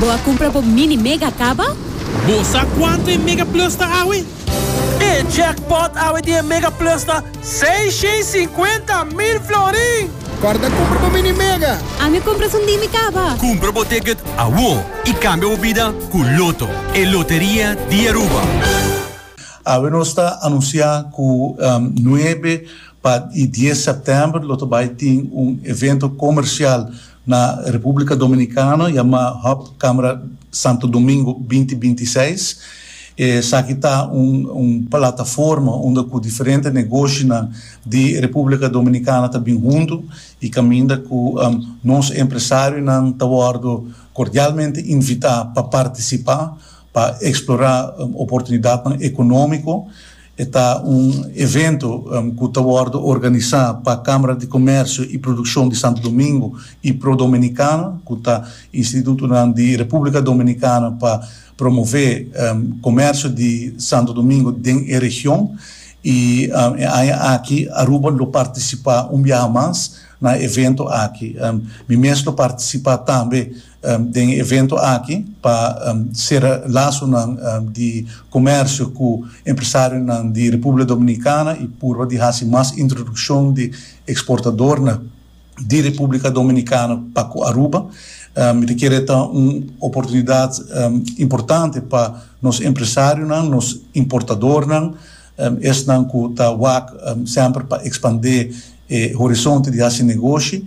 Bo a cumpra bo Mini Mega caba? Bo sa cuanto e Mega Plus ta awe? E jackpot awe di e Mega Plus ta seishentscincuenta mil florin! Corda cumpra bo Mini Mega! Ami a cumpra su Ndimi caba! Cumpra bo ticket awo y cambia bo bida cu Lotto, e loteria di Aruba! Awe nos ta anuncia cu nuebe. Pa e dies sèptèmber lo ta bai tin un evento komersial na Repúblika Dominikano yamá Hub Camera Santo Domingo binti binti seis. Esaki ta un un plataforma unda ku diferente negoshinan di Repúblika Dominikana ta bin huntu i kaminda ku nos empresarionan ta wòrdu kordialmente invitá pa partisipá pa eksplorá oportunidatnan ekonómiko. E ta un evento cu ta wordo organisa pa Camara di Comercio y Produccion di Santo Domingo y Pro Dominicana, cu ta institutonan di Republica Dominicana pa promove comercio di Santo Domingo den e region, y e aña aki Aruba lo participa un biaha mas na e evento aki. Mi mes lo participa tambe Den e evento aki pa sera lasonan di komersio ku empresarionan di Republika Dominikana i purba di hasi mas introdukshon di eksportadornan di Republika Dominikana pa ku Aruba. Mi ta kere ta un oportunidat importante pa nos empresarionan, nos importadornan. Esnan cu ta wak semper pa expande e horizonte di haci negoshi.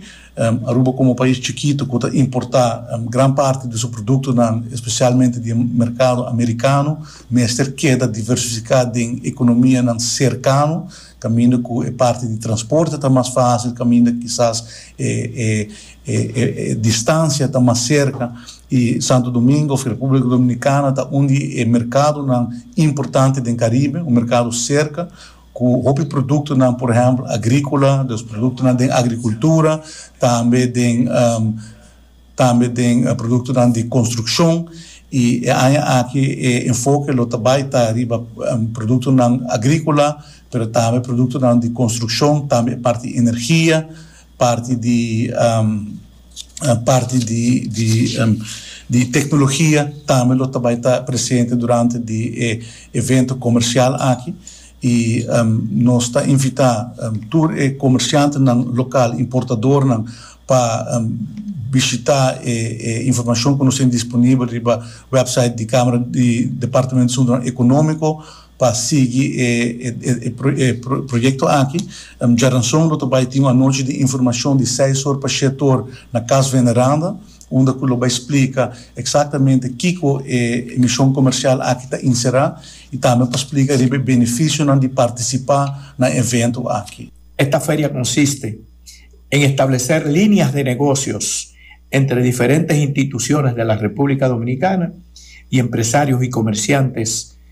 Aruba como pais chikito cu ta importa gran parti di su productonan, especialmente di e mercado Americano, mester keda diversifica den economianan cercano, caminda cu e parti di transporte ta mas facil, caminda kisas e E distancia ta mas cerca y Santo Domingo of Republica Dominicana ta un di e mercadonan importante den Caribe, un mercado cerca cu hopi productonan por ehempel agricola, los productonan den agricultura, tambe den tambe den productonan di construccion y e aña aki e enfoke lo ta bay ta riba productonan agricola pero tambe productonan di construccion, tambe e parti energia. Parti di parti di di di tecnologia tambe lo ta bay ta presente durante di e evento comercial aki y nos ta invita tur e comerciantenan local, importadornan pa bishita e e informacion cu nos tin disponibel riba website di camera di departamento de asuntonan economico. pa sigui e proyekto aki. Djaranson lo ta bai tin un anochi di informashon di seis or pa shete or na Kas Veneranda unda ku lo bai splika eksaktamente kiko e emishon komershial aki ta inserá i tambe pa splika riba e benefisionan di partisipá na evento aki. Esta feria konsiste en estableser líneas de negocios entre diferentes instituciones de la República Dominicana y empresarios y comerciantes,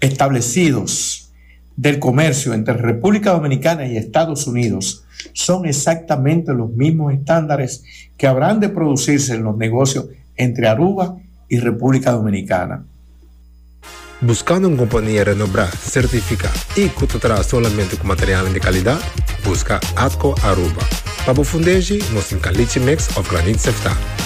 establecidos del comercio entre República Dominicana y Estados Unidos son exactamente los mismos estándares que habrán de producirse en los negocios entre Aruba y República Dominicana. Buscando un compania renobrá, certificá y cu ta traha solamente cu materialnan di calidad? Busca Atco Aruba. Pa bo fundeshi, nos tin calichi mix of granit sefta.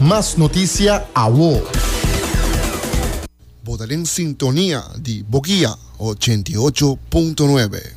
Mas noticia awo. Bo ta den sintonia di Bokia ochenta i ocho punto nuebe.